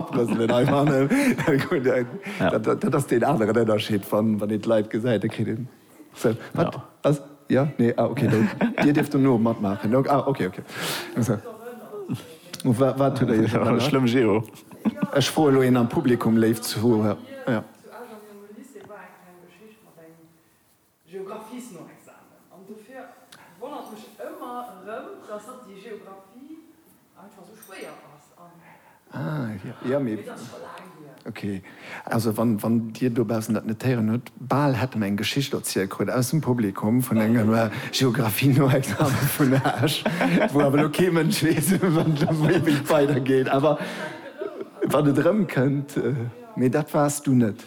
Abrëselen hei fannen. Dat ass deen aneren Ënnerscheed, wann een et live gesäit, da kritt een se. Wat ass? Jo, nee, ah ok, Dir dierft dono matmaachen. Ah ok, ok. Wat hutt Der Iech erënnert? Schlëmm Geo. Ech froe lo een am Publikum, léif Zuhörer. Geographiesnoexamen. An dofir wonnert mech ëmmer erëm, dass hatt déi Geographie einfach esou schwéier ass an. Ah, jo, mee. Et ass scho laang hier. Ok. Also wann, wann Dir dobaussen dat net héieren hutt, bal hätt en eng Geschicht erzielt kritt aus dem Publikum vun engem Geographiesnoexamen vun Esch, wou awer elo kee Mënsch weess, wéi et weidergeet. Awer wann et erëmkënnt. Mee dat waars du net.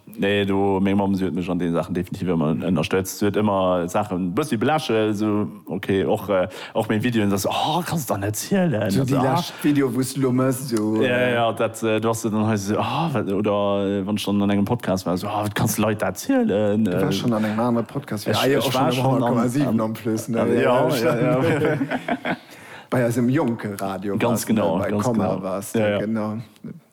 Nee, do, meng Mamm, si huet mech an deene Saachen definitiv ëmmer ënnerstëtzt. Si huet ëmmer d'Saachen e bëssi belächelt, esou, ok, och, och meng Videoen, da se, Oh, kanns der net zielen! Esou déi lescht Video, wou s de elo méchs, esou. Jo, jo, dat, do ass se dann hei esou, Oh, wat, oder wann ech dann an engem Podcast war, esou, Oh, wat kanns de Leit dat zielen? Du waars schonn an engem anere Podcast, jo, ah jo, och schonn um 100,7 en plus, ne? Jo, jo, jo. Bei eisem Jonke-Radio waars de, bei Komma waars de, genau.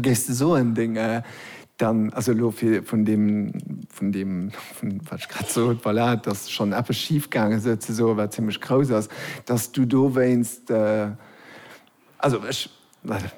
Géifs de soen, deng, dann, also elo fir vun deem, vun deem, vun wat ech grad sot, voilà, dass schonn eppes schif gaange sou ze soen, wat zimmlech grouss ass, dass du dowéinst, also ech,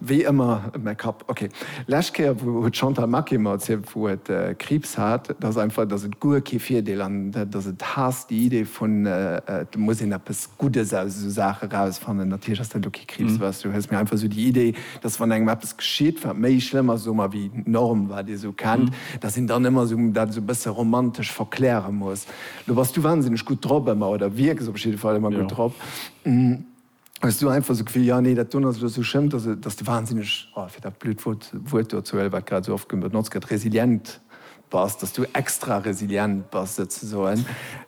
wéi ëmmer, mäi Kapp, okay. Lescht Kéier, wou huet d'Chantal Maquet mer erzielt, wou et Kriibs hat, dass einfach, dass et guer kee Virdeel an dass et haasst, déi Idee vun, et muss een eppes Guddes aus esou Saache rausfannen. Natierlech ass dat elo kee Kriibs, weißt du, hues, mä einfach esou déi Idee, dass wann engem eppes geschitt, wat méi schlëmm ass, soe mer, wéi d'Norm, wat ee sou kennt, dass een dann ëmmer sou dat sou e bësse romantesch verkläre muss. Lo bass du wansinneg gutt drop ëmmer, oder wierks op jidde Fall ëmmer gutt drop. Hues du einfach sou d'Gefill, jo, nee, dat doen ass elo sou schlëmm, dass, dass de wansinneg, oh, fir dat blöd Wuert do ze huelen, wat grad sou oft benotzt gëtt, resilient Bass, dass du extra resilient bass souzesoen.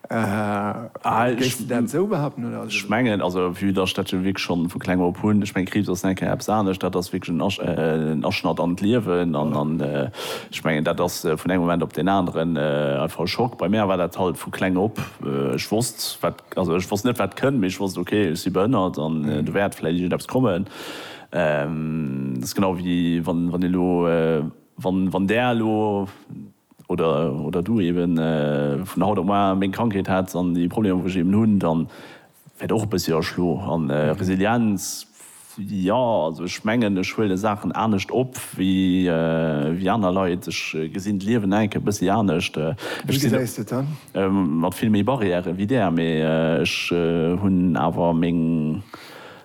Géifs de dat esou behaupten oder? Ech mengen, also vue dass ech dat jo wierklech schonn vu kleng op hunn, ech mengen Kriibs ass nèt keng eppes anescht, dat ass wierklech en Aschnatt an d'Liewen an ech mengen dat ass vun engem Moment op deen aneren einfach e Schock. Bei mär war dat halt vu kleng op, ech wosst wat, also ech wosst net wat kënnt, mee ech wosst ok ech si behënnert an do wäert vläit iergendeppes kommen. Dat ass genau wéi wann een elo. Wann Där elo, oder Du eben, vun haut op moar meng Krankheet hätts an déi Problemer wou ech eben hunn, da wäert och e bëssi erschlo. An Resilienz, jo also ech mengen ech huele Saachen anescht op wéi aner Leit. Ech gesinn d'Liewen enk e bëssi anescht. Ech sinn mat vill méi Barrièren wéi Där, mee ech hunn awer meng.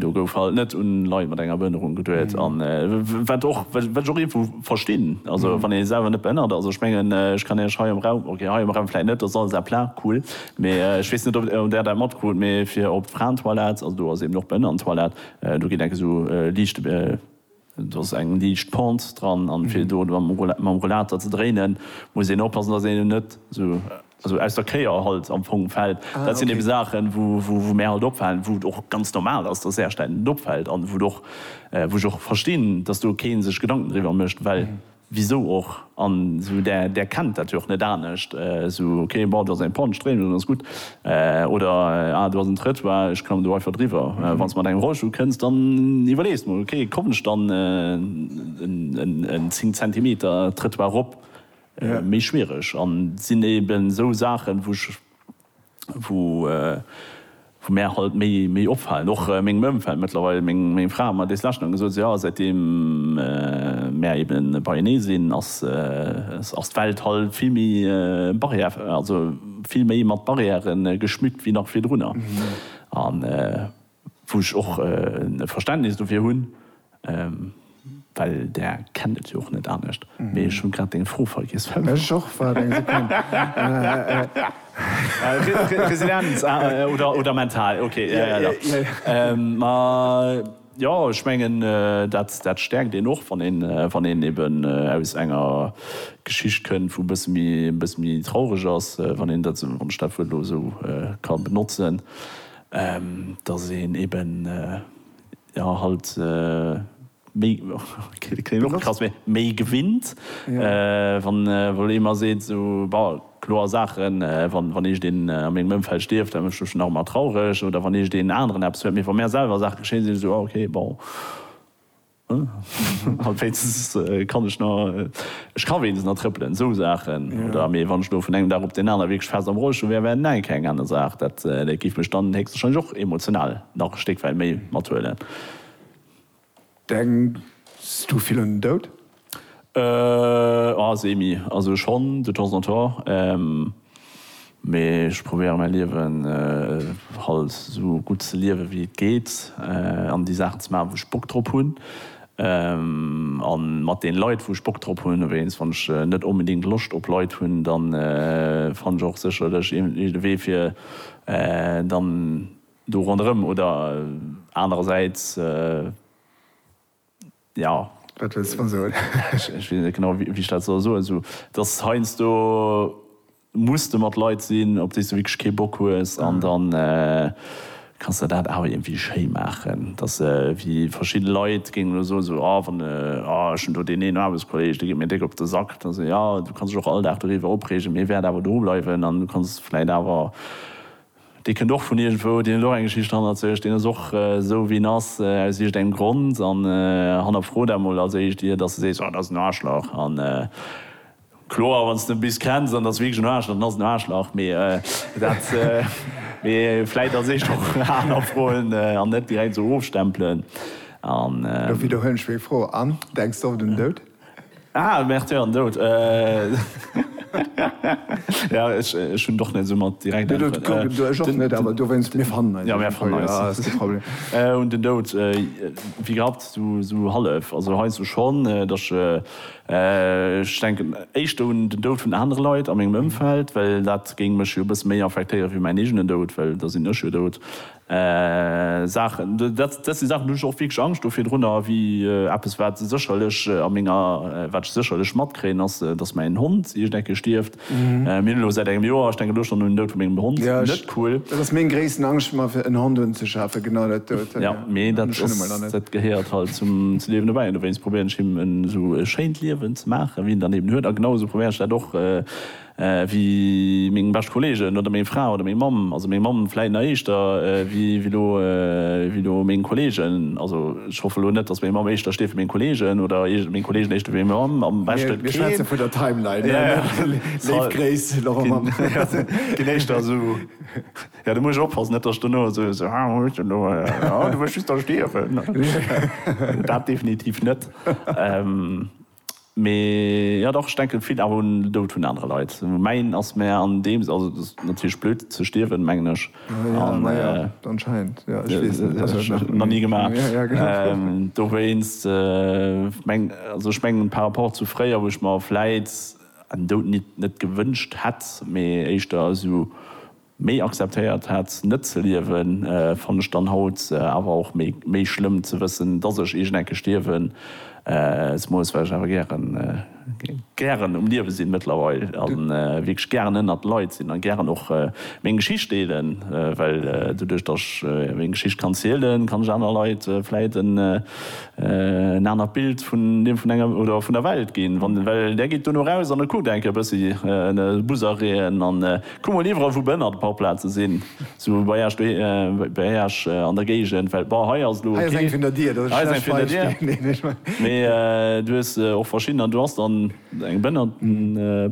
Do gouf halt net un Leit mat enger Behënnerung geduet an wat och wat ech och iergwo verstinn, also wann ee selwer net behënnert ass, ech mengen ech kann Iech hei am Raum, ok hei am Raum vläit net, dat ass alles à plein, cool, mee ech weess net ob Där dat matkrut, mee fir op d'Fraentoilette, also do ass eben och d'Behënnerentoilette, do geet enk esou liicht. Do ass eng liicht Pente dran an fir do mam Rollater ze dréinen muss een oppassen dass een net esou aus der Kéier halt am Fong fällt. Dat sinn eben Saachen wou mär halt opfalen, wou et och ganz normal ass dass Äerstäit net opfällt an wou ech och verstinn dass do keen sech Gedanken driwwer mécht well Wisou och? An esou där, där kennt dat jo och net anescht. Esou, ok, bon, do ass eng Panne, Stréimung, dann ass gutt. Oder, ah, do ass en Trëttoir, ech klammen do einfach driwwer. Wann s de mat engem Rollstull kënns, dann iwwerlees mol, ok, kommen ech dann en 10 Zentimeter Trëttoir erop? Méi schwiereg. An sinn eben esou Saachen, wou ech wou mär halt méi opfalen, och mengem Ëmfeld mëttlerweil, meng Fra huet mer dees lescht nach gesot, sou jo, säitdeem mär ebe beienee sinn, ass d'Welt halt vill méi barrière, also vill méi mat Barrièren geschmückt wéi nach virdrunner. Wou ech och Verständnis dofir hunn, well Der kennt et jo och net anescht. Mee ech hu grad deng Fro vergiess. Ech och, waart eng Sekonn. Resilienz oder mental, ok. Ma jo, ech mengen, dat stäerkt een och, wann een eben aus enger Geschicht kënnt, wou e bësse méi traureg ass, wann ech dat Wuert elo esou ka benotzen. dass een eben jo halt méi klingt och krass mee méi gewinnt wann wou ee mer seet sou bon kloer Saachen wann wann eescht een a mengem Ëmfeld stierft dat mécht mech nach emmer traureg oder wann eescht een aneren eppes huet mee wa mär selwer Saach geschéien sinn ech sou ah ok bon. An wéinstens kann ech nach, ech ka wéinstens nach trëppelen, esou Saachen. Oder, mee wann ech elo vun engem Dag op deen anere wierklech fest am Rollstull wär, wär näin, keng aner Saach. Dat géif mech dann héchstwahrscheinlech och emotional nach e Stéck wäit méi mathuelen. Denks du vill un den Doud? Semi. Also schonn, de temps en temps. Mee ech probéieren mäi Liewen halt esou gutt ze liewen wéi et geet an déi Saachen ze maachen wou ech Bock drop hunn an mat den Leit wou ech Bock drop hunn. Wéinst wann ech net onbedéngt Loscht op Leit hunn dann fann ech och sécherlech iergendwéi de Wee fir dann do ronderëm oder anerersäits. Jo. Wat wëlls de mer soen? Ech weess net genau, wéi ech dat soll soen. Esou, dass heiansdo muss de mat Leit sinn, op déi s de wierklech kee Bock hues. An da kanns de dat awer iergendwéi schéi maachen. Dass wéi verschidde Leit géingen elo soen, esou, Oh, wann, oh, ech hunn do deen een Aarbechtskolleeg, dee geet mir déck op de Sack. Da sot, Jo, du kanns dech och all Dag doriwwer opreegen, mee e wäert awer do bleiwen. An du kanns vläicht awer Dee kënnt och vun iergendwou, deen huet och eng Geschicht hannert sech, deen ass och esou wéi en ass aus iergendengem Grond. An hannerfro dat mol als éischt ier dass de sees, dat ass en Aarschlach. A kloer, wann s de e bis kenns, an dat ass wierklech en Aarschlach, dann ass en en Aarschlach. Mee dat, mee vläit als éischt och hannerfroen an net direkt esou ofstempelen. An. Lo widderhuelen ech meng Fro. An, denks de och un den Doud? Ah, Märtyr an Doud. Ja, ech hunn och net esou mat direkt Äntweren. Ech och net, awer dowéinst, mir fannen eis. Ja, mir fannen eis. Ass kee Problem. Un den Doud, wéi gehabt, esou hallef. Also heiansdo schonn, datt ech denken éischter un den Doud vun anere Leit a mengem Ëmfeld, well dat géing mech jo e bësse méi affektéiere wéi mäin eegenen Doud, well da sinn ech jo dout. Saachen, dat si Saachen, do hunn ech och wierklech Angscht do virdrunner, ewéi eppes, wat sécherlech a menger, wat ech sécherlech matkréien, ass, datt mäin Hond iergend eng Kéier stierft. Mir hunn elo säit engem Joer, ech denken elo schonn un den Doud vu mengem Hond, net cool. Dat ass meng gréissten Angscht, mer fir en Hond unzeschafen, genau dat dout. Jo, mee dat ass, dat gehéiert halt zum Liewen dobäi an dowéinst probéieren ech him en esou schéint Liewen ze maachen, ewéi en dann eben huet a genau esou probéieren ech dat och, wéi meng bescht Kollegen oder meng Fra oder meng Mamm, also meng Mamm vläit nach éischter wéi lo wéi lo meng Kollegen, also ech hoffe lo net, datt meng Mamm éischter stieft wéi meng Kollegen oder iergend meng Kollegen éischter wéi meng Mamm, am beschte keen. Mir schwätze vun der Timeline, léif Gréiss Laurent Mamm. Keen éischter esou, jo do muss ech oppassen, net datt ech dono esou so, ah hues de elo, ah du wëlls just da stierwen, dat definitiv net. Mee jo dach, ech denken vill awer un den Doud vun anere Leit. Mäin ass mär an deem Sënn, also et ass natierlech blöd ze stierwen mengen ech, nach ni gemaach, dowéinst mengen also ech mengen par rapport zu fréier wou ech mer vläit en Doud nit net gewënscht hätt, mee éischter esou. Méi akzeptéiert hat net ze liewen fann ech dann haut awer och méi schlëmm ze wëssen dass ech iergend eng Kéier stierwen s moes, well ech awer gären gären um Liewe sinn mëttlerweil a wierklech gären ënnert Leit sinn a gären och meng Geschicht deelen, well doduerch dass ech meng Geschicht kann zielen kann ech aner Leit vläit en anert Bild vun dem vun enger oder vun der Welt ginn, well där geet duerno raus an e kuckt eng Kéier e bëssi Busereen an. Kuck mol iwwerall wou Bënn an de Parkplaze sinn, sou bei Äech doheem, bei Äech an der Géigend, well bon hei ass elo, hei ass eng vun der Dier, dat ass e schlecht Beispill, mee du hues och verschidden an do ass dann eng Bënn an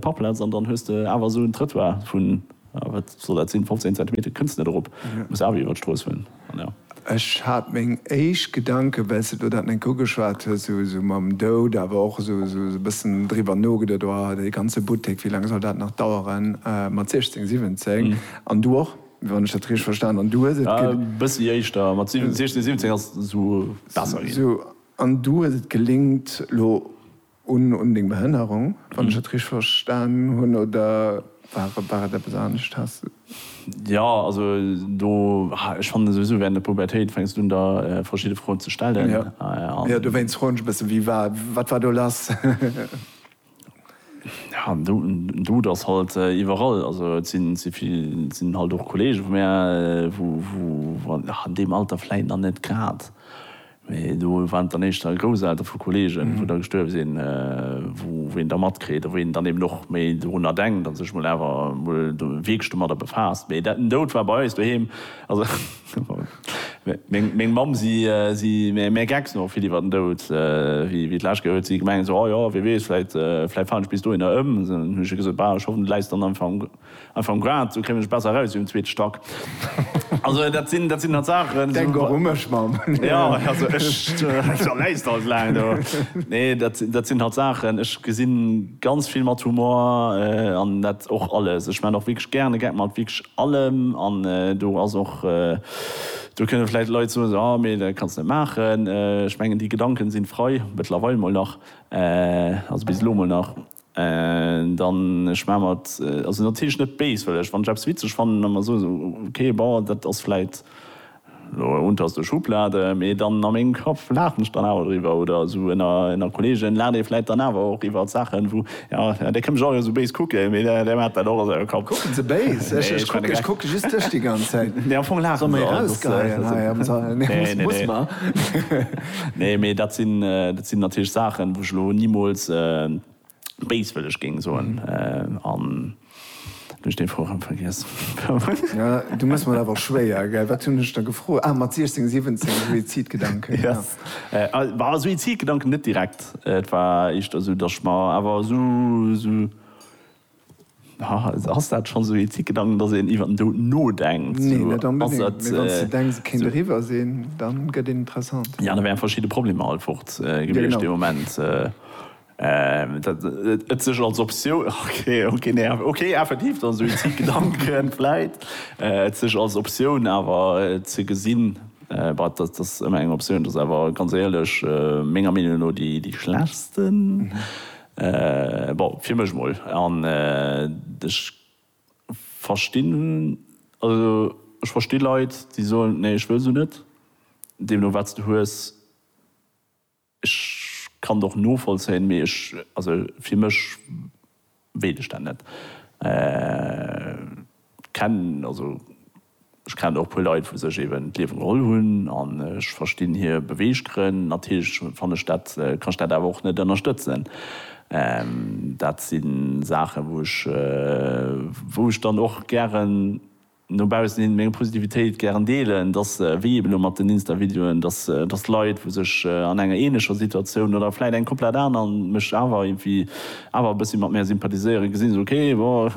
d'Parkplaz an dann hues de awer esou en Trëttoir vun, wat soll dat sinn, 15 Zentimeter kënns net erop, muss awer iwwer d'Strooss huelen. Ech hat meng éischt Gedanken, well s de do dat net ugeschwat hues, esou mam Doud, awer och esou e bëssen driwwer nogeduet, oh, dee ganze Buttek, wéi laang soll dat nach daueren mat 16, 17? An du och, wann ech dat richteg verstan hunn, du hues et. E bëssi éischter, mat 16, 17 ass esou besser ginn. An du hues et gelingt, elo. Un deng Behënnerung, wann ech et richteg verstan hunn, oder war et eppes anescht? Has de. Jo, also do, ech fannen souwisou während der Pubertéit fänks du un der verschidde Froen ze stellen. Jo, jo, dowéinst froen ech e bëssen, wie war, wat war do lass? Jo, en Dout ass halt iwwerall, also et sinn halt och Kollege vu mär, wou an deem Alter vläit nach net grad Mee do waren et dann éischter Grousseltere vu Kolleegen, wou da gestuerwe sinn, wou een da matkritt a wou een dann eben och méi dorunner denkt a sech mol awer mol do wierklech domadder befaasst. Mee den Doud war bei eis doheem, also meng Mamm, si méi gecks nach vill iwwer den Doud wéi d'lescht Kéier, huet si gemengt esou, oh jo, wie weess, vläicht falen ech bis dohinner ëm. Dann hunn ech hir gesot, bah, ech hoffen, du läis dann einfach am. Einfach um Grad, sou kléngen ech besser eraus wéi um zweete Stack. Also dat sinn, dat sinn dann Saachen. Denk och u mech, Mamm. Jo, also ech, da läis de halt laang do. Nee, dat, dat sinn halt Saachen, ech gesi ganz vill mat Humor an dat och alles. Ech maachen och wierklech gären e Gag mat wierklech allem an do ass och, do kënne vläicht Leit soen esou, ah, mee dat kanns net maachen. Ech mengen, déi Gedanken sinn frei, mëttlerweil mol nach, also bis elo mol nach. Dann ech maach mer et also natierlech net béis, well ech wann ech eppes witzeg fannen a mer soen esou okay bon dat ass vläit elo e Untast duerch Schublade, mee dann a mengem Kapp laachen ech dann awer driwwer oder esou ënner ënner Kolleegen laacht ee vläit dann awer och iwwert Saachen wou jo dee kënnt mech och esou béis kucken, mee dee dee maacht dat och a sengem Kapp. Kucken se béis? Ech ech kucken ech kucke just dech déi ganz Zäit. Nee am Fong laache se. Soll mer ee rausgeheien hei am Sall? Nee muss muss mer. Nee, mee dat sinn, dat sinn natierlech Saachen, wou ech elo nimools béiswëlleg géing soen. An elo hu ech dee Froe rëm vergiess. Ja, du mëss mer awer schwéier, gell? Wat hunn ech der gefrot? Ah, mat 16, 17, Suizidgedanken, jo. Bah, Suizidgedanken net direkt. Et war éischter esou, datt ech mer awer esou, esou Ass dat schonn esou ee Ticketang, datt een iwwer den Doud nodenkt? Nee, net onbedéngt. Mee wann s de denks, et kéint eriwwer sinn, da gëtt een interessant. Jo, da wären verschidde Problemer alt fort gewiescht dee Moment. Et sech als Optioun, okay, nee, okay, effektiv, datt esou ee Ticketgedanken vläit, et sech als Optioun awer ze gesinn, bah, datt ass ëmmer eng Optioun, datt ass awer ganz éierlech menger Meenung no déi schlechtsten. Bon, fir mech mol. An ech verstinn, also ech versti Leit, déi soen, nee, ech wëll se net. Deemno wat s de hues, ech kann et och novollzéien, mee ech, also fir mech wéilt ech dat net. Kenn, also. Ech kennen och e puer Leit wou sech eben d'Liewe geholl hunn an ech verstinn hir Beweeggrënn. Natierlech fanne ech dat, kann ech dat awer och net ënnerstëtzen. Dat si Saachen wou ech, wou ech dann och gären no baussen hin meng Positivitéit gären deelen, dass wéi eben elo mat den Insta-Videoen, dass dass Leit wou sech an enger ähnlecher Situatioun oder vläit eng komplett aner mech awer irgendwie awer e bëssi mat mär sympathiséieren, gesinn se, ok, bon,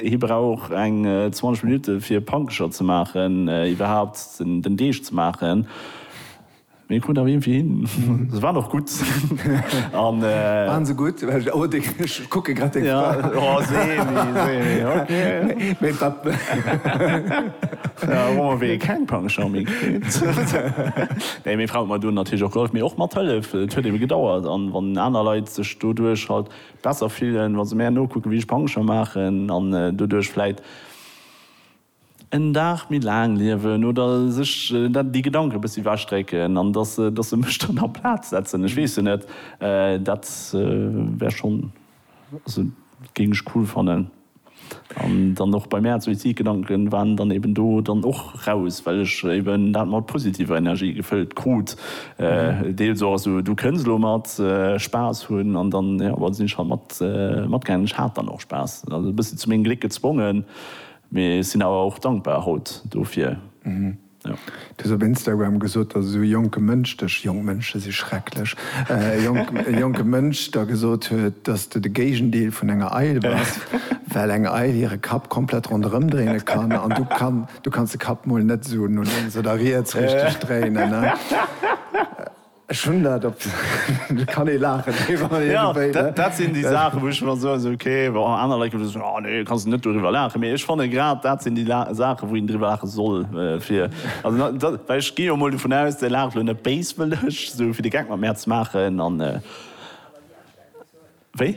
hie brauch eng 20 Minutte fir e Pankecher ze maachen, iwwerhaapt den Deeg ze maachen, mee e krut awer iergendwéi hin. Se waren och gutt. Waren se gutt? Oh, ech kucke grad deng Fra. Jo, Seemi, Seemi, ok. Mee wat? Hu mer wéi keng Pankecher méi kritt. Nee, meng Fra huet mer do natierlech och gehollef, mee och mathëllef, et huet ebe gedauert, an wann aner Leit sech. doduerch halt besser fillen wa se mär nokucken wéi ech Pancher maachen an doduerch vläit en Dag méi laang liewen oder sech déi Gedanken e bëssi ewech drécken an dass se dass se mech dann a Plaz setzen. Ech weess jo net, dat wär schonn also géing ech cool fannen. An dann och bei mäer Suizidgedanken waren dann eben do dann och raus, well ech eben dat mat positiver Energie gefëllt krut. Deels och esou, du kënns elo mat Spaass hunn an dann, jo, da sinn ech halt mat matgaangen. Ech hat dann och Spaass, also e bëssi zu mengem Gléck gezwongen, mee sinn awer och dankbar haut dofir. Du hues op Instagram gesot, datt esou e jonke Mënsch dech, jonk Mënsche si schrecklech, e jonke Mënsch der gesot huet, datt s du de Géigendeel vun enger Eil bass, well eng Eil hire Kapp komplett ronderëm dréine kann an du kann, du kanns de Kapp mol net esou no lénks oder riets richteg dréinen. Ech hunn dat op de, kann ee laachen, iergendwéi, ne? Dat sinn déi Saachen, wou ech mer soen, esou ok, bon, aner Leit kënnen soen, oh nee, kanns de net doriwwer laachen. Mee ech fanne grad, dat sinn déi Saachen, wou een driwwer laache soll, fir, also dat, well ech ginn jo emol dovun aus, Dir laacht elo net béiswëlleg, esou fir de Geck mat mär ze maachen an, wéi?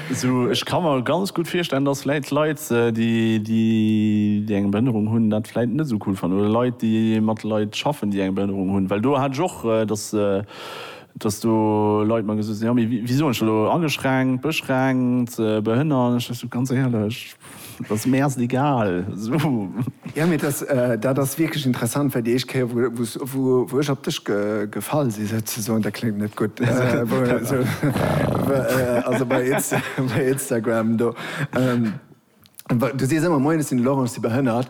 Sou, ech ka mer ganz gutt virstellen, dass vläit Leit, déi eng Behënnerung hunn, dat vläit net esou cool fannen, oder Leit, déi mat Leit schaffen, déi eng Behënnerung hunn, well do hat ech och, dass do Leit mer gesot hunn, jo, mee wéi soen ech dat elo, ageschränkt, beschränkt, behënnert, ech sot, ganz éierlech, Et ass mär se egal. Sou. Jo, mee dat ass wierklech interessant, well déi éischt Kéier, wou ech op dech gefall sinn, souzesoen, dat kléngt net gutt, also bei Instagram do, du sees ëmmer, Moien, ech sinn de Laurent, ech si behënnert,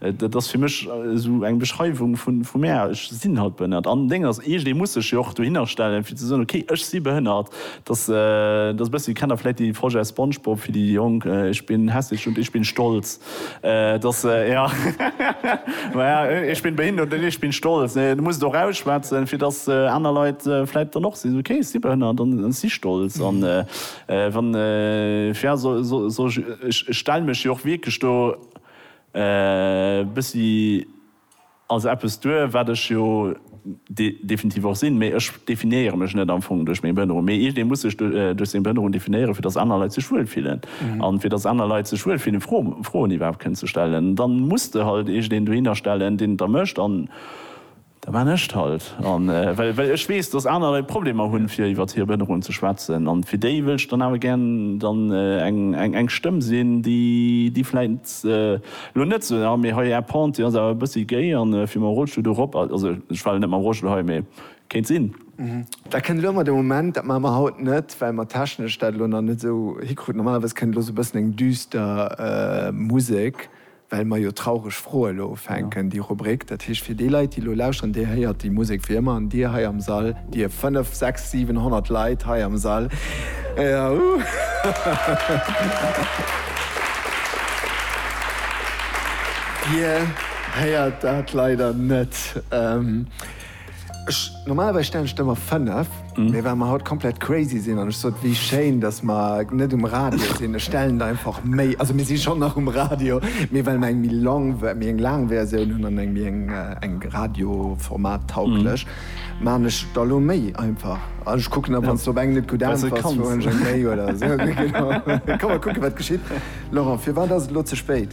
Dat ass fir mech esou eng Beschreiwung vu mär, ech sinn halt behënnert. An Deng ass eescht, ee muss sech jo och dohinner stellen, fir ze soen, ok, ech si behënnert. Dass dass e bëssi, kennt Der vläicht dee Projet Spongebob fir déi Jonk, Ich bin hässlich und ich bin stolz. Dass jo, naja, ich bin behindert und ich bin stolz. Du muss et och ausschwätzen, fir dass aner Leit vläicht dann och si, ok, ech si behënnert an ech si stolz. An wann, fir, soll ech, ech stelle mech jo och wierklech do, E bëssi ass eppes duer, wat ech jo definitiv och sinn, mee ech definéiere mech net am Fong duerch meng Behënnerung, mee iergendee muss sech duerch seng Behënnerung definéieren, fir datt aner Leit sech wuel fillen. A fir datt aner Leit sech wuel fillen, Froen iwwerhaapt kënnen ze stellen, da muss de halt iergendeen dohinner stellen, deen et da mécht. Da maan ech 't halt. An well ech wees, dass aner Leit Problemer hun fir iwwert hier Behënnerung ze schwätzen, an fir déi wëll ech dann awer gär dann eng Stëmm sin, déi vläit lo nët sou, ah mee hei Är Pente, déi as awer e bëssi géi, an fir mam Rollstull do rop, also ech war lo nët mam Rollstull hei, mee kéint sin. Dat kënnt elo ëmmer de Moment, dat maache mer haut nët, well mer technesch dat elo nach nët sou hikruten. Normalerweis kënnt elo sou e bëssen eng düster Musek well mer jo traureg Froe lo ufänken, déi Rubrik. Dat heescht, fir déi Leit, déi elo lauschteren, Dir héiert déi Musek wéi ëmmer. An Dir hei am Sall, Dir fënnef, sechs, siwen, honnert Leit hei am Sall, Dir héiert dat leider net. Ech, normalerweis stellen ech der emmer 5, mee well mer haut komplett crazy sinn an ech sot, wéi schéin, datt mer net um Radio sinn, ech stellen der einfach méi, also mir si schonn nach um Radio, mee well mer eng méi long, méi eng laang Versioun hunn an eng méi eng, eng radioformattaugléch, maachen ech der lo méi einfach. An ech kucken da, wann s de op eng net gutt äntwers, fueren ech eng méi oder esou. Kommen mer kucken, wat geschitt. Laurent, firwat ass et lo ze spéit?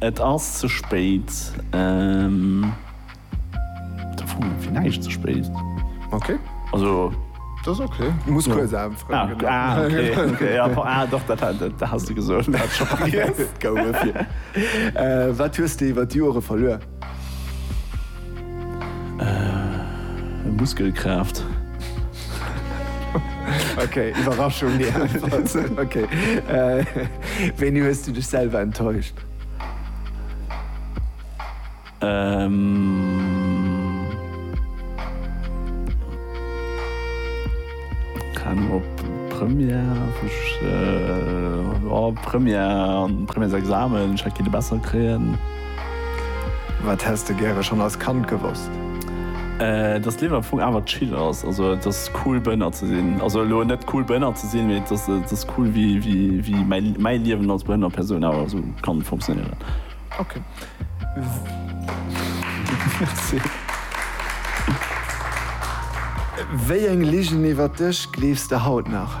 Et ass ze spéit. Fir näischt ze spéit. Ok. Also. Dat ass ok. Du muss kuerz anfroen. Ah, okay. Ah, doch, dat has de gesot. Gouf et fir. Wat hues de iwwer d'Jore verluer? Muskelkraaft. Ok, Iwwerraschung déi einfach sinn. Ok, wéini hues du dech selwer enttäuscht? Keng Anung, op Première wou ech, oh Première, Premièresexamen, ech hätt kenne besser kréien. Wat häss de gäre schonn als Kand gewosst? Dass d'Liewen am Fong awer chill ass, also et ass cool Bënner ze sinn, also elo net cool Bënner ze sinn, mee et ass et ass cool wéi wéi wéi mäi mäi Liewen als behënnert Persoun awer esou kann funktionéieren. Ok. Merci. Wéi eng Ligen iwwert dech gleefs de haut nach?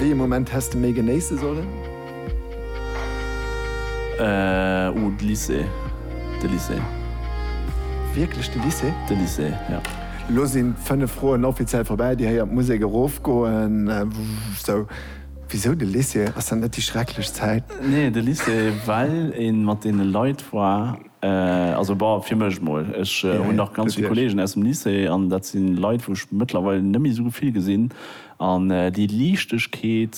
Wéi ee Moment häss de méi genéisse sollen? Oh, de Lycée. De Lycée. Wierklech de Lycée? De Lycée, jo. Elo sinn d'fënnef Froen offiziell vorbäi. Dir héiert d'Musek erofgoen. Sou, wisou de Lycée? Ass dat net déi schrecklech Zäit? Nee, de Lycée, well ee mat deene Leit war. Also bah, fir mech mol. Ech hunn nach ganz vill Kollegen aus dem Lycée an dat si Leit, wou ech mëttlerweil net méi esou vill gesinn. An déi Liichtegkeet,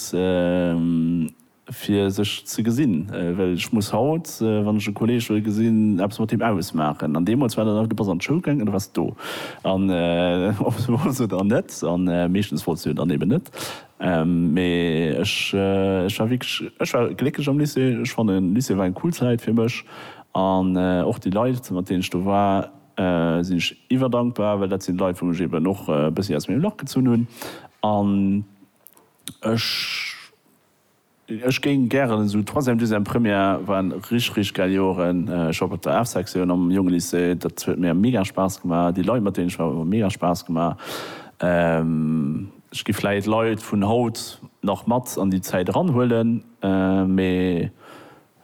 fir sech ze gesinn, well ech muss haut, wann ech e Kolleg wëll gesinn, eppes mat him ausmaachen. An deemools war dat einfach, du bass an d'Schoul gaangen an du waars do. An ob se wollts oder net, an meeschtens wollts du jo dann eben net, Mee ech war wierklech, ech war glécklech am Lycée. Ech fannen, Lycée war eng cool Zäit fir mech. An och déi Leit, mat deenen ech do war, sinn ech iwwerdankbar, well dat sinn d'Leit, wou ech eben och e bëssi aus mengem Lach gezunn hunn. An ech. Ech géing gären esou Troisième, Deuxième, Première waren rich rich gäil Joeren. Ech war op der Art Sektioun am jonge Lycée, dat huet mir mega Spaass gemaach. Déi Leit mat deenen ech war hu mega Spaass gemaach. Ech gi vläit Leit vun haut nach mat an déi Zäit eran huelen, mee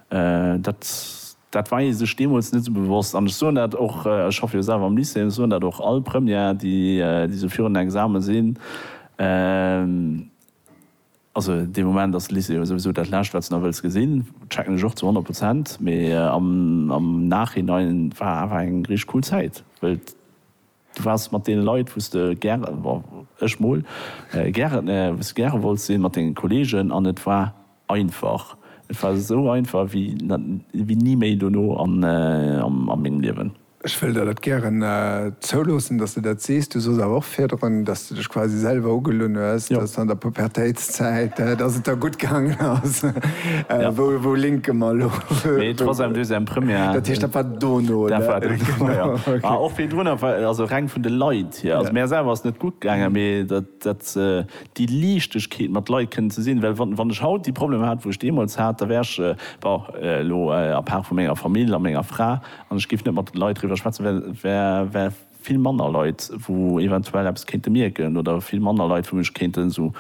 dat dat war ee sech deemools net esou bewosst. An ech soen dat och, ech schaffe jo selwer am Lycée, ech soen dat och all Première déi déi esou virun den Examen sinn, Also dee Moment ass de Lycée jo souwisou dat Lescht, wat s de nach wëlls gesinn. Checken ech och zu honnert Prozent. Mee am Nachhinein war awer eng richteg cool Zäit, well du waars mat deene Leit, wou s de gäre, ech mol, gäre wolls sinn, mat denge Kolleegen. An et war einfach, et war esou einfach wéi ni méi dono a mengem Liewen. Ech wëll der dat gären zouloossen, dass de dat sees. Du sooss awer och virdrun, dass de dech quasi selwer ugelunn hues, dass an der Pubertéitszäit, dass et der gutt gaangen ass. Wou linke mer elo? Nee, troisième, deuxième, première. Dat heescht, dat war dono, oder? Dat war dono, jo. A och virdrun, also reng vun de Leit hier. Also mär selwer ass et net gutt gaangen, mee dat, déi Liichtegkeet mat Leit kënnen ze sinn. Well wann ech haut déi Problemer hat, wou ech deemools hat, da wär ech, bon, elo à part vu menger Famill a menger Fra, An ech géif net mat de Leit driwwer schwätzen, well et wäre vill manner Leit, wou eventuell eppes kéinte mierken oder vill manner Leit, wou mech kéinten esou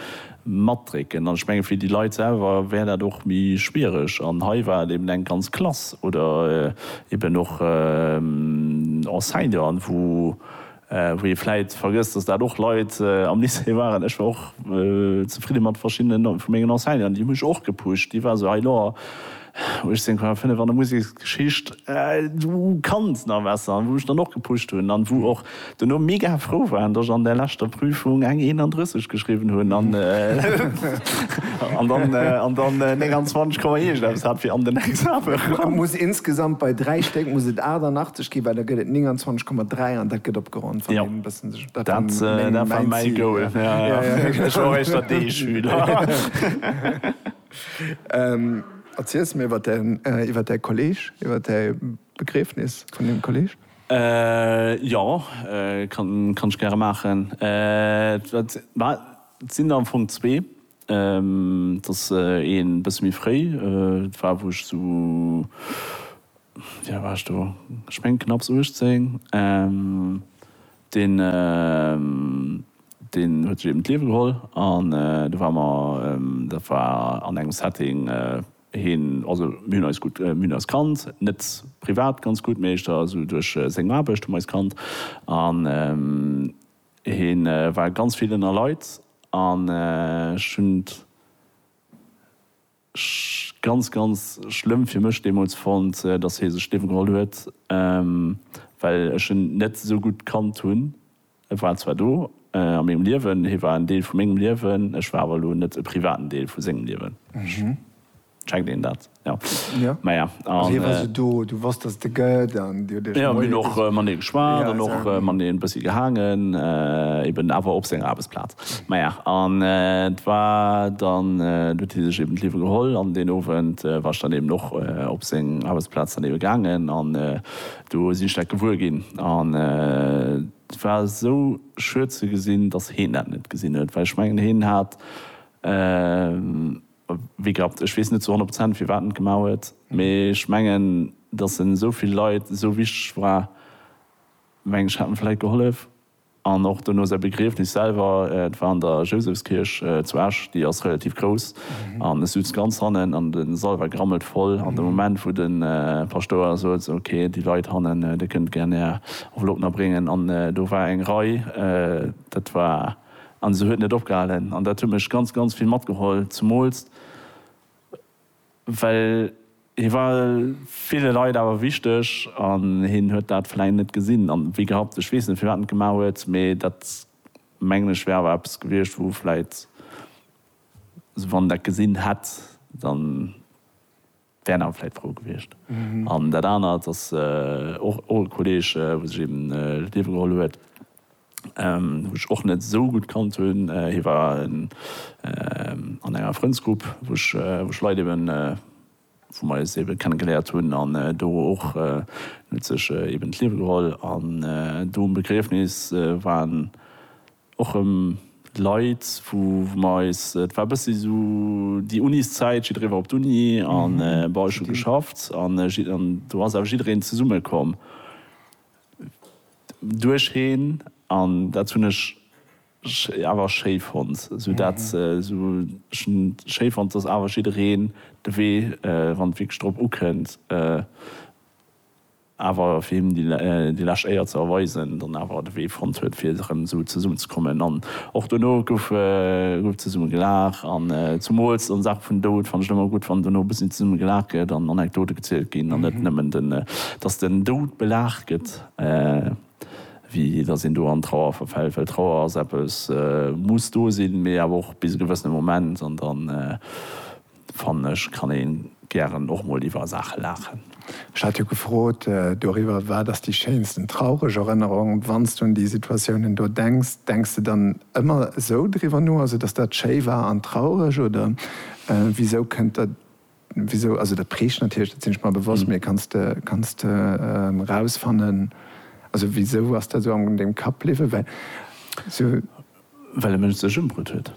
matdrécken. An ech menge fir déi Leit selwer wär dat och méi schwiereg. An hei war et eben eng ganz Klass oder eben och Enseignanten, wou, Wou ee vläit vergësst, datt dat och Leit am Lycée waren, ech war och zefridde mat verschiddenen vu mengen Enseignanten, déi hu mech och gepusht, déi war esou, hei lo, 18,5 an der Museksgeschicht, du kanns nach besser, an wou ech dann och gepusht hunn an wou och duerno mega frou waren, datt ech an där leschter Prüfung eng 31 geschriwwen hunn an dann 29 Komma iergendeppes hat fir an den Examen eran. Muss insgesamt bei 3 Stéck muss et 88. Okay, well da gëtt et 29,3 an dat gëtt opgeronnt, wann een e bëssen sech. Dat war mäi Goal. Ech war och éischter den D-Schüler. Erziels mir iwwer däi Kolleg, iwwer däi Begriefnis vun deem Kolleg. Jo, kann ech gäre maachen. Et sinn der am Fong zwee. Et ass ee bësse méi fréi. Et war, wou ech esou, wéi al war ech do, ech mengen knapps 18. Deen, deen huet sech eben d'Liewe geholl an do ware mer, dat war an engem Setting, hien, also mir hunn eis gutt, mir hunn eis kannt, net privat ganz gutt, mee éischter esou duerch seng Aarbecht hu mer eis kannt an Hien war ganz vill ënner Leit an ech hunn et ganz, ganz schlëmm fir mech deemools fonnt, dass hie sech d'Liewe geholl huet, well ech en net esou gutt kannt hunn. E war zwar do a mengem Liewen, hie war en Deel vu mengem Liewen, ech war awer elo net e privaten Deel vu sengem Liewen. Checkt een dat? Jo. Jo. Maja, Also hie war an. sou do, du wosst, dass et e gëtt an dir hutt iech Jo, mir hunn och mat him geschwat Ja, an och also. mat him e bëssi gehaangen, eben awer op senger Aarbechtsplaz. Maja, an et war dann, do huet hie sech eben d'Liewe geholl an deen Owend war ech dann eben och op seng Aarbechtsplaz dann ebe gaangen an do sinn ech dat gewuer ginn an et war esou schued ze gesinn, dass heen dat net gesinn huet, well ech mengen, hien hat. Wéi gehabt, ech weess net zu 100 Prozent firwat en et gemaach huet, mee ech mengen, datt en esou vill Leit esou wichteg war, meng ech, hätt en vläit gehollef. An och dono säi Begriefnis selwer, et war an der Jousefskierch zu Esch, déi ass relativ grouss, an ech sutz ganz hannen an de Sall war gerammelt voll. An de Moment wou de Paschtouer sot, esou ok, déi Leit hannen, dir kënnt gär är Enveloppen erbréngen, an do war eng Rei, dat war. An se huet net opgehalen. An dat huet mech ganz, ganz vill matgeholl. Zemools well hie war ville Leit awer wichteg an hien huet dat vläicht net gesinn a wéi gehabt, ech weess net firwat en et gemaach huet, mee dat mengen ech wär awer eppes gewiescht wou vläicht, wann en dat gesinn hätt, dann. Wären awer vläit frou gewiescht. An dat anert ass och e Kolleeg, wou sech eben d'Liewe geholl huet, wou ech och net esou gutt kannt hunn. Hie war an enger Frëndsgrupp, wou ech Leit eben, wou mer eis ebe kenne geléiert hunn. An do och, en huet sech eben d'Liewe geholl. An do um Begriefnis war en och rëm Leit wou mer eis, et war e bëssi esou déi Uniszäit, jiddweree war op d'Uni an bon ech hu geschafft an do ass awer jiddereen zesumme komm duercheen an dat hunn ech awer schéi fonnt, esou dat esou ech hunn schéi fonnt, dass awer jiddereen de Wee wann et wierklech drop ukënnt. awer fir him déi lescht Éier ze erweisen, dann awer de Wee fonnt huet fir erëm esou zesummen ze kommen. An och dono gouf zesummen gelaach an zumools an Saache vun Doud fannen ech et ëmmer gutt wann dono e bëssi zesummen gelaach gëtt an Anekdote gezielt ginn an net nëmmen den dass den Doud belaach gëtt wéi dass een do an Trauer verfält, well Trauer ass eppes muss do sinn, mee awer och bis e gewëssene Moment an dann. fannen ech, kann ee gären och mol iwwer Saache laachen. Ech hat jo gefrot doriwwer, Wat ass déi schéinsten traureg Erënnerung? Wann s de un déi Situatiounen do denks, denks de dann ëmmer esou driwwer no, also datt dat schéi war an traureg? Oder wisou kënnt der, wisou, also dat prägt natierlech, dat sinn ech mer bewosst, mee kanns de, kanns de erausfannen, also wisou ass dat esou an dengem Kapp bliwwen? Well e Mënsch sech ëmbrutt huet.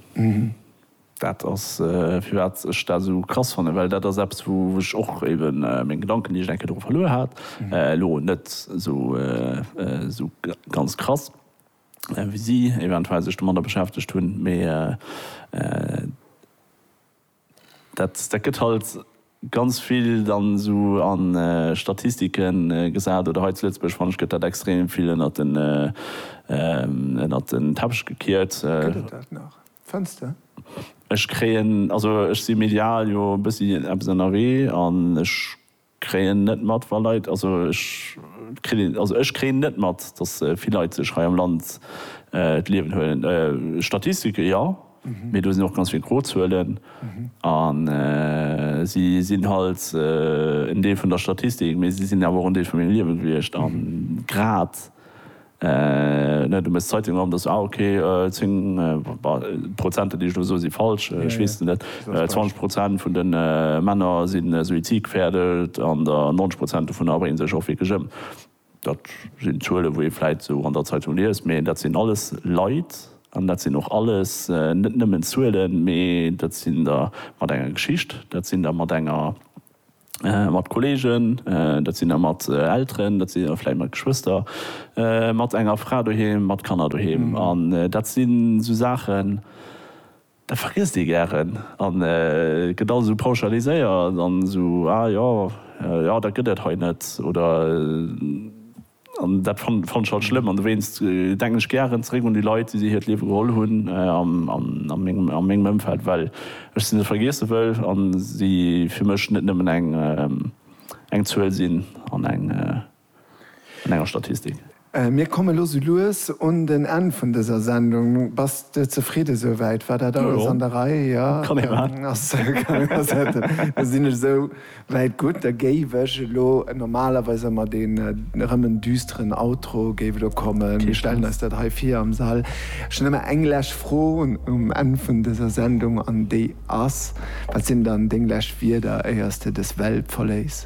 Dat ass firwat ech dat esou krass fannen, well dat ass eppes wou ech och eben meng Gedanken déi ech enke dru verluer hat, elo net esou ganz krass wéi si eventuell sech domadder beschäftegt hunn, mee dat gëtt halt. ganz vill dann esou a Statistike gesat oder hei zu Lëtzebuerg fanne ech gëtt dat extrem vill ënnert den ënnert den Teppech gekiert. Gëtt et dat nach, fënns de? Ech kréien, also ech si medial jo e bëssi eppes ënnerwee an ech kréien net mat wa Leit, also ech kritt een, also ech kréien net mat, datt vill Leit sech hei am Land d'Liewen huelen. Statistike jo. Mee do sinn och ganz vill gro Zuelen a si sinn halt en Deel vun der Statistik, mee si sinn awer och en Deel vu mengem Liewe gewiescht. A grad, du méchs d'Zeitung op, da se, ah, okay, zéng, d'Prozenter, déi ech elo soen, si falsch, ech weess et net, zwanzeg Prozent vun de Männer si suizidgefährdet an der, 90 Prozent dovunner bréngen sech och wierklech ëm. Dat sinn Zuelen, wou ee vläit esou an der Zeitung liest, mee dat sinn alles Leit an dat sinn och alles net nëmmen Zuelen, mee dat sinn der mat enger Geschicht, dat sinn der mat enger, mat Kolleegen, dat sinn der mat Elteren, dat sinn der vläit mat Geschwëster, mat enger Fra doheem, mat Kanner doheem. An dat sinn esou Saachen. Dat vergiesst ee gären a gëtt alles esou pauschaliséiert an esou, ah jo, jo dat gëtt et hei net oder. An dat fannen ech halt schlëmm an dowéinst denken ech gären zeréck un déi Leit, déi si hiert Liewe geholl hunn a mengem Ëmfeld, well ech se net vergiesse wëll a si fir mech net nëmmen eng Zuel sinn an eng. an enger Statistik. Mir komme elo sou lues un den Enn vun dëser Sendung. Bass de zefridde souwäit? War dat alles an der Rei? Jo, kann ee mat. Da sinn ech esou wäit gutt. Da géif ech elo, normalerweis ëmmer deen erëm en düsteren Outro géif elo kommen. Mir stellen eis dat hei vir am Sall. Ech hunn ëmmer eng lech Fro um Enn vun dëser Sendung an déi ass, Wat sinn dann deng lech Wierder, éiers de dës Welt verléiss?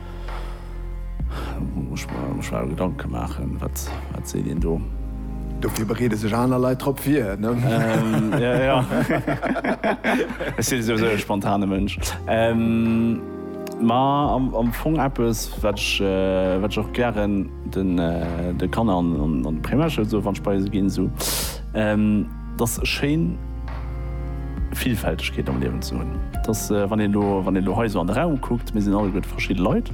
Muss ech mer schwéier Gedanken maachen, wat seet een do? Dofir bereede sech aner Leit drop vir, ne? Jo, jo. Ech sinn souwisou e spontane Mënsch. Ma am Fong eppes, wat ech och gären de Kanner an d'Primärschoul soe wann ech bei se ginn. 't ass schéin Villfältegkeet am Liewen ze hunn. 't ass, wann een elo, wann een elo hei esou an de Raum kuckt, mir sinn alleguerte verschidde Leit,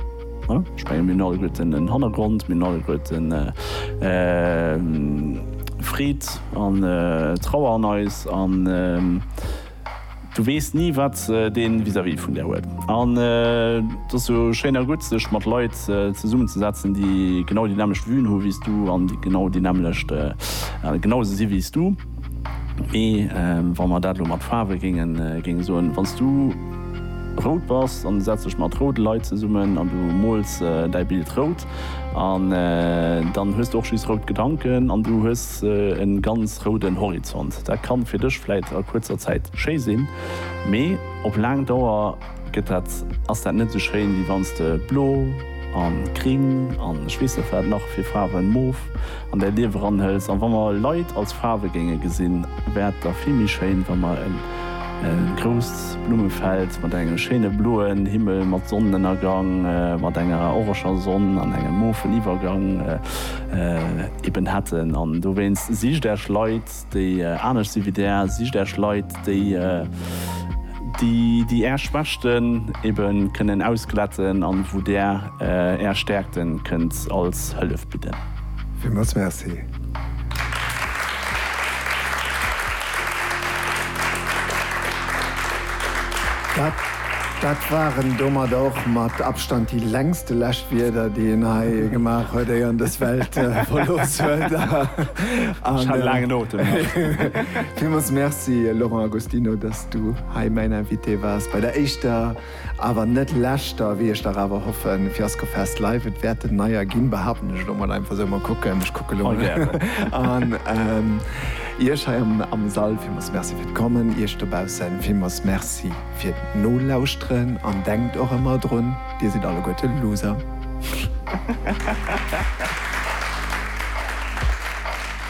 ne? Ech menge mir hunn alleguerten en Hannergrond, mir hunn alleguerten Freed an Trauer an eis an, Du weess ni wat dee vis-à-vis vun der huet. An et ass jo schéin a gutt sech mat Leit zesummen ze setzen déi genau déi nämlecht Vuen hu wéi s du an déi genau déi nämlecht genau esou si wéi s du. Mee wa mer dat elo mat Faarwe géinge soen, wann s du rout bass an du setz dech mat roude Leit zesummen an du mools däi Bild rout, an dann hues de och just rout Gedanken an du hues e ganz rouden Horizont. Dat kann fir dech vläit a kuerzer Zäit schéi sinn, mee op laang Dauer gëtt dat, ass dat net esou schéin, wéi wann s de blo an gring an ech weess net wat nach fir Faarwen, mof, an däi Liewe ranhëls. An wa mer Leit als Faarwe géinge gesinn, wäert da vill méi schéin, wa mer e. E grousst Blummefeld mat engem schéine bloen Himmel, mat Sonnenënnergang, mat enger oreger Sonn an engem mofen Iwwergang eben hätten. An dowéinst, Sicht Äech Leit, déi anescht si wéi Där, sicht Äech Leit, déi, déi Är Schwächten ebe kënnen ausglätten an wou Där Är Stäerkten kënnt als Hëllef bidden. Villmools Merci. Dat waren domadder och mat Abstand déi längste Läschwierder, déi een hei gemaach huet, éier en dës Welt verlooss huet. Ech hat e laangen Otem nach. Villmools Merci, Laurent Agostinho, dass du hei mäin Invité waars bei der éischter. Awer net leschter, wéi ech dach awer hoffen, Fiasco Fest Live, et wäert en neier ginn, behaapten ech elo mol einfach sou, mol kucken, ech kucke lo mol. An Iech hei am Sall villmools Merci fir d'Kommen, Iech dobausse villmools Merci fir d'Nolauschteren an denkt och ëmmer drun, Dir sidd alleguerte Loser.